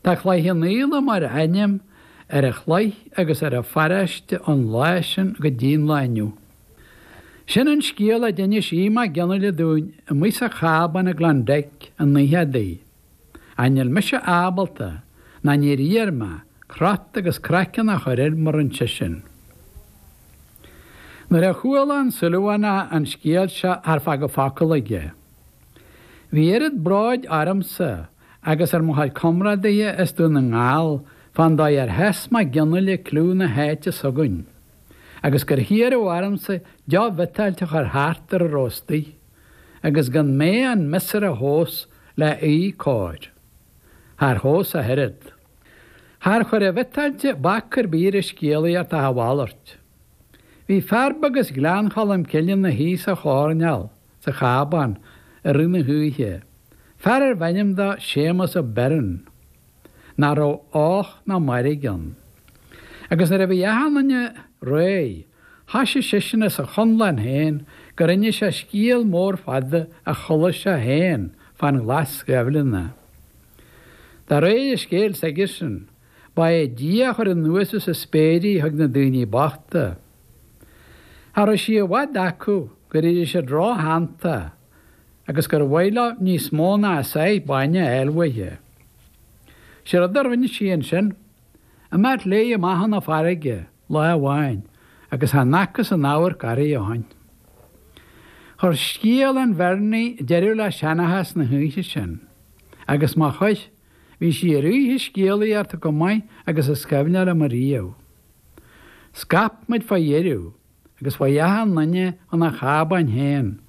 Tá Cloich Cheannfhaola mar ainm ar an chloich agus ar an pharáiste ón lá sin go dtí an lá inniu. Sin an scéal a d'inis Aodh Mag Fhionnaile dúinn amuigh sa chábán i Klondike an oíche adaí. Ach níl mise ábalta, ná níor iarr mé, crot agus craiceann a chur air mar a rinne seisean. Nuair a chuala an Súilleabhánach an scéal seo char fágadh focal aige. Bhí oiread bróid ormsa agus ar mo chuid comrádaithe as Dún na nGall fán dóigh ar sheas Mag Fhionnaile cliú na háite s'againn agus gur hiarradh ormsa deoch bhiotáilte a chur thart ar a raibh istigh agus gan mé an miosúr a thomhas le bheith cóir. Char thomhais ach oiread. Char chuir an bhiotáilte bac ar bith ar an scéalaíocht ach a mhalairt. Bhí fear beag as Gleann Cholm Cille ina shuí sa choirneál, sa chábán i rith na hoíche, fear arbh ainm dó Séamas Ó Beirn, nach raibh och ná mairg ann. Agus nuair a bhí achan duine réidh, thoisigh seisean as a chonlán féin gur inis sé scéal mór fada a chuala sé féin fán Ghlas Ghaibhleanna. De réir an scéil s'aigesean, Ba é Dia a chuir anuas as an spéir í chuig na daoine bochta. Cha raibh sí i bhfad acu gur éirigh siad róshantach agus gur mhaith leo níos mó ná a sáith bainne a fháil uaithi. Sé rud a rinne sí ansin, imeacht léi amach chun na farraige lá amháin agus chan fhacthas aon amharc uirthi ó shin. Chuir scéal an Bheirnigh deireadh le seanachas na hoíche sin agus má chuir féin Bhí sí ar oíche scéalaíochta chomh maith agus is cuimhin liom riamh. Scaip muid fá dheireadh agus fá dheoidh achan duine chun a chábáin féin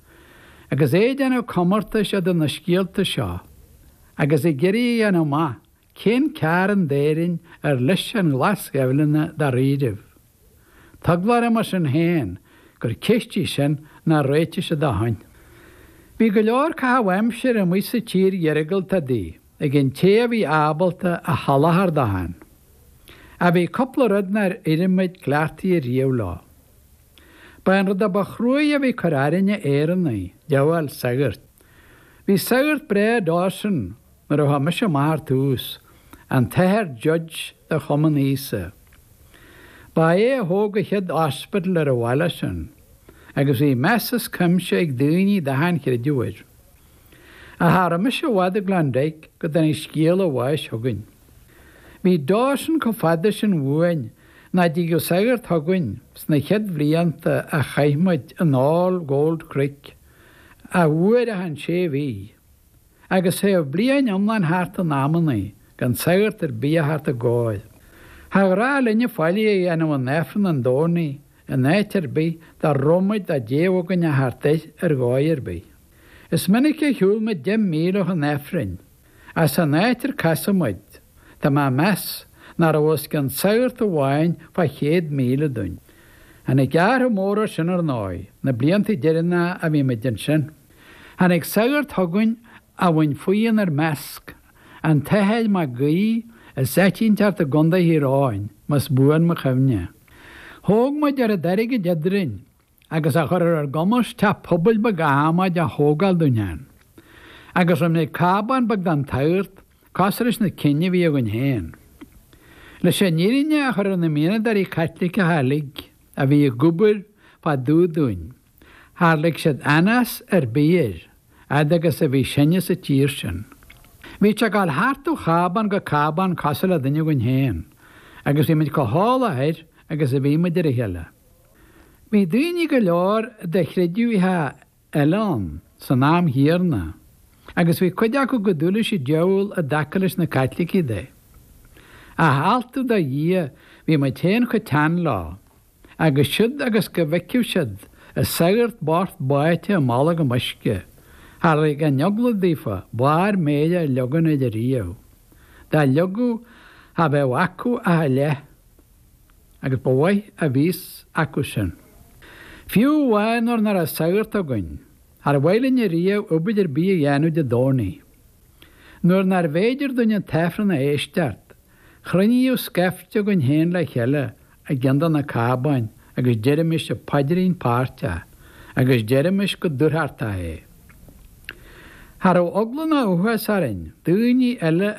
agus é ag déanamh comórtais idir na scéalta seo agus ag iarraidh a dhéanamh amach cén cearn d'Éirinn ar leis an Ghlas Ghaibhleanna dáiríribh. Tá eagla orm mar sin féin gur ceist í sin nár réitigh siad ó shin. Bhí go leor caitheamh aimsire amuigh sa tír iargúlta adaí ag an té a bhí ábalta a sholáthar dó féin. Ach bhí cúpla rud nár éirigh muid cleachtaithe riamh leo. Ba é an rud a ba chruaidhe a bhí ag cur orainne Éireannaigh, díobháil sagart. Bhí sagart breá i nDawson Nuair a chuaigh mise amach ar tús, an tAthair Judge de Chumann Íosa. Ba é a thóg an chéad ospidéal ar an bhaile sin, agus bhí meas as cuimse ag daoine de achan chreideamh air. Cha raibh mise i bhfad i Klondike go dtáinig scéal a bháis chugainn. Bhí Dawson chomh fada sin uainn nach dtigeadh sagart chugainn sna chéad bhlianta a chaith muid in All Gold Creek, ach uair achan sé mhí. Agus théadh bliain iomlán thart in amannaí gan sagart ar bith a theacht dár gcóir. Char ghnách linne faillí a dhéanamh in Aifreann an Domhnaigh in áit ar bith dá raibh muid dá dtéadh againn a theacht air ar dhóigh ar bith. Is minic a shiúil muid deich míle chun Aifrinn, ach san áit ar casadh muid, tá mé ag meas nach raibh os cionn sagart amháin fá chéad míle dúinn. Tháinig athrú mór air sin, ar ndóigh, na blianta deireanacha a bhí muid ansin. Tháinig sagart chugainn a bhain faoi inár measc an tAthair Mac Aodha as Eitínteart i gContae Thír Eoghain, más buan mo chuimhne. Thóg muid oiread airgid eadrainn agus a chuir ar ár gcumas teach pobail beag adhmaid a thógáil dúinn ann. Agus rinne muid cábán beag don tsagart, cosúil leis na cinn a bhí againn féin. Leis an fhírinne a chur ar na mianadóirí Caitliceacha uilig a bhí ag obair fá dtaobh dúinn, Char lig siad anás ar bith air fhad agus a bhí sinne sa tír sin. Bhíodh sé ag dul thart ó chábán go cábán cosúil le duine againn féin agus bhí muid chomh heolach air agus a bhí muid ar a chéile. Bhí daoine go leor de chreideamhacha eile ann san am chéanna agus bhí cuid acu chomh dubh leis an diabhal i dtaca leis na Caitlicigh de. Ach altú do Dhia bhí muid féin chomh teann leo. agus siúd agus go bhfeicfeadh siad an sagart bocht báite i mbolgam uisce. Char lig an eagla daofa barr méire a leagaint air ariamh. Dá leagfadh cha bheadh acu ach a leath, agus ba mhaith a bhí a fhios acu sin. Fiú amháin nuair nach raibh sagart againn, char mhaith linn ariamh obair ar bith a dhéanamh Dé Domhnaigh. Nuair nárbh fhéidir dúinn an t-Aifreann a éisteacht, chruinníodh scaifte againn féin le chéile i gceann de na cábáin agus deirimis an Paidrín Páirteach agus deirimis go dúthrachtach é. Cha rabh eagla ná uafás orainn daoiní eile a.